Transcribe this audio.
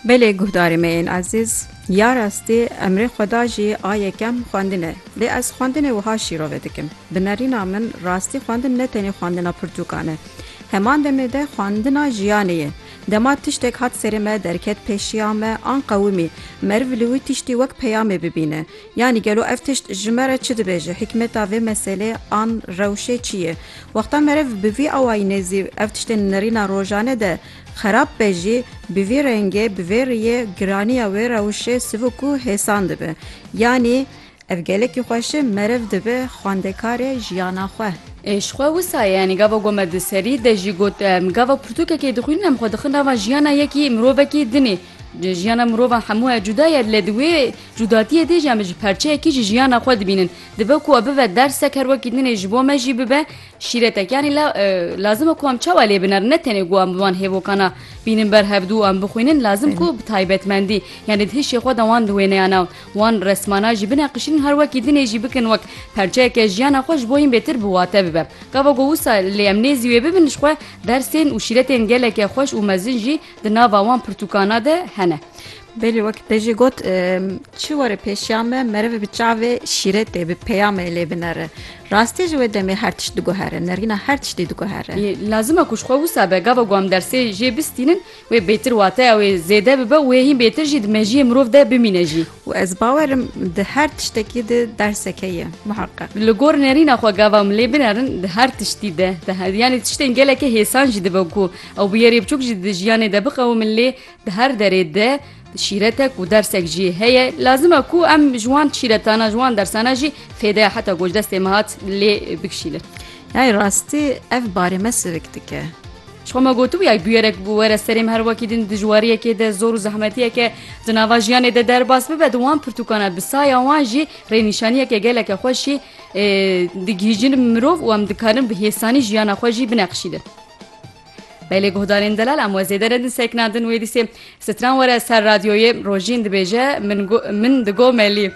Belê guhdarê me yên ezîz, ya rastî emrê xweda jî a yekem xwendin e. Lê ez xwendinê wiha şîrove dikim. Bi nerîna min rastî xwendin ne tenê xwendina pirtûkan e. Heman demê de xwendina jiyanê ye. Dema tiştek hat serê me derket pêşiya me an qewimî meriv li wî tiştî wek peyamê bibîne. Yanî gelo ev tişt ji me re çi dibêje, hîkmeta vê meseleyê an rewşê çi ye? Wexta meriv bi vî awayînê zî ev tiştên nirîna rojane de xerab be jî, bi vî rengê, bi vê riyê giraniya wê rewşê sivik û hêsan dibe. Yanî ev gelekî xweşe meriv dibe xwendekarê jiyana xwe. Ê ji xwe wisa ye, yanî gava ku me di serî de jî got, gava pirtûkekê dixwînin em xwe dixin nava jiyana yekî mirovekî din ê. Jiyana mirovan hemû e cuda ye lê di wê cudatiyê de jî em ji perçeyekî ji jiyana xwe dibînin. Dibe ku e bibe dersek her wekî din ê ji bo me jî bibe şîretek. Yanî la lazim e ku em çawa lê binerin ne tenê ku em bi van hêvokan a bînin ber hev dû û em bixwînin lazim ku bi taybetmendî yanî di hişê xwe de wan di wêneya nav wan resmana jî bineqişînin her wekî din ê jî bikin wek perçeyeke jiyana xwe ji bo hîn bêtir bi wate bibe. Gava ku wisa lê em nêzî wê bibin ji xwe dersên û şîretên geleke xweş û mezin jî Di nava wan pirtûkana de hene. Belê wek te jî got çi were pêşiya me merivê bi çavê şîrê tê bi peyamê lê binere. Rastî ji wê demê her tişt diguhere, nerîna her tiştî diguhere. Lazim e ku ji xwe wisa be gava ku em dersê jê bistînin wê bêtir wateya wê zêde bibe û wê hîn bêtir jî di mejiyê mirov de bimîne jî. Û ez bawer im di her tiştekî de derseke ye muheqeq. Li gor nerîna xwe gava em lê binerin di her tiştî de, yanî tiştên gelekê hêsan jî dibe ku Ew bi yerê biçûk jî di jiyanê de biqewimin lê di her derê de şîretek û dersek jî heye. Lazim e ku em ji wan şîretana, ji wan dersana jî fêdeya heta ku ji destê me hat lê bikişîlin. Yayê rastî ev barê me sirik dike. Ji xwe me gotibûye bûyerek were serê me her wekî din dijwariyekê de zor û zehmetiyeke di nava jiyanê de derbas bibe di wan pirtûkana bi saya wan jî rênîşaniyeke geleke xweşî digihîjin mirov û em dikarin bi hêsanî jiyana xwe jî bineqişînin. Belê guhdarên delal em we zêde redin sekna din wê dîsê stran were ser radyoyê rojîn dibêje min digomelî.